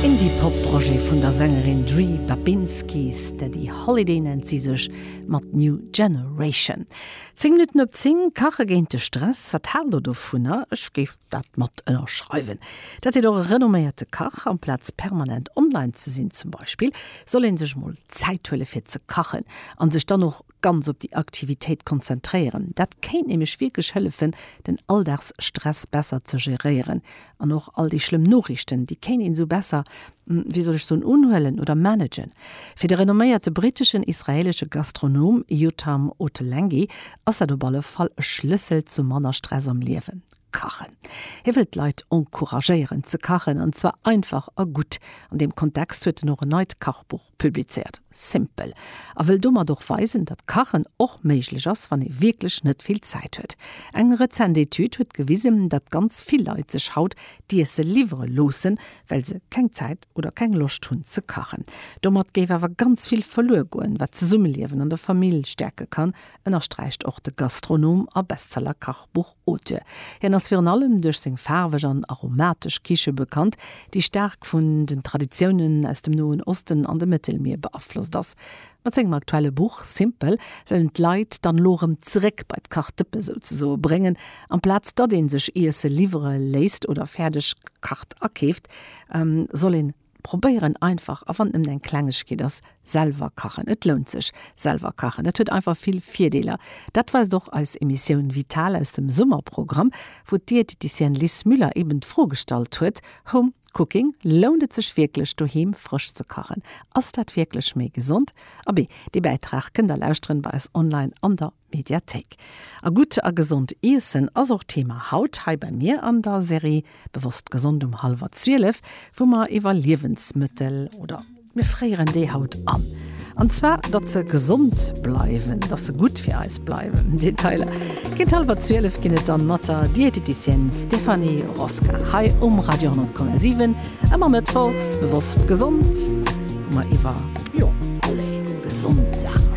Indie-Pop-Projet vun der Sängerin Dri Babinski, Steady Holiday nennt si sech, mat New Generation. Zéng Minutten op zéng, Kache géint de Stress, wat haalt der dovunner? Ech géif dat mat ënnerschreiwen. Dat seet och e renomméierte Kach. Amplaz permanent online ze sinn zum Beispill, soll ee sech mol Zäit huele fir ze kachen a sech dann och ganz op déi Aktivitéit konzentréieren. Dat kéint nämlech wierklech hëllefen, den Alldagsstress besser ze geréieren. An och all déi schlëmm Noriichten, déi kéint een esou besser, wéi soll ech soen, unhuelen oder managen. Fir de renomméierte briteschen, israelesche Gastronom Yotam Ottolenghi ass dat op alle Fall e Schlëssel zu manner Stress am Liewen, Kachen. Hie wëllt d'Leit encouragéieren ze kachen, an zwar einfach a gutt. An deem Kontext huet en och en neit Kachbuch. publizéiert. Simpel. A wëll domat och weisen, datt Kachen och méiglech ass, wann ee wierklech net vill Zäit huet. Eng rezent Etüd huet gewisen, datt ganz vill Leit sech haut d'Iesse liwwere loossen, well se keng Zäit oder keng Loscht hunn ze kachen. Domat géif awer ganz vill verluer goen, wat d'Zesummeliewen an der Famill stäerke kann, ënnersträicht och de Gastronom a Bestseller-Kachbuch. Auteur. Hien ass virun allem duerch seng faarweg an aromatesch Kiche bekannt, déi staark vun den Traditiounen aus dem Noen Osten an dem Mëttelmier beaflosst ass. Mat sengem aktuelle Buch Simple wëll en d'Leit dann elo erëm zeréck bei d'Kachdëppe souzesoe bréngen, amplaz datt ee sech Iesse liwwere léisst oder fäerdeg gekacht akeeft, soll een, probéieren einfach a wann et nëmmen eng Klengegkeet ass, selwer kachen. Et lount sech, selwer kachen. Dat huet einfach vill Virdeeler. Dat weist och eis Emissioun Vital aus dem Summerprogramm, wou d'Diététicienne Liz Müller eben d'Fro gestallt huet, Home Cooking, lount et sech wierklech doheem frësch ze kachen? Ass dat wierklech méi gesond? Abee, dee Bäitrag kënnt der lauschteren bei eis online an der. Mediathéik. A gutt a gesond iessen ass och Thema haut hei bei mir an der Serie Bewosst Gesond um hallwer 12, wou mer iwwer Liewensmëttel oder. Mir fréieren déi haut an. An zwar datt se gesond bleiwen, datt se gutt fir eis bleiwen. Detailer géint hallwer 12 ginn et dann mat der Diététicienne Stéphanie Rosca hei um Radio 10,7. Ëmmer mëttwochs Bewosst Gesond, wou mer iwwer, jo, allez, gesond Saache schwätzen.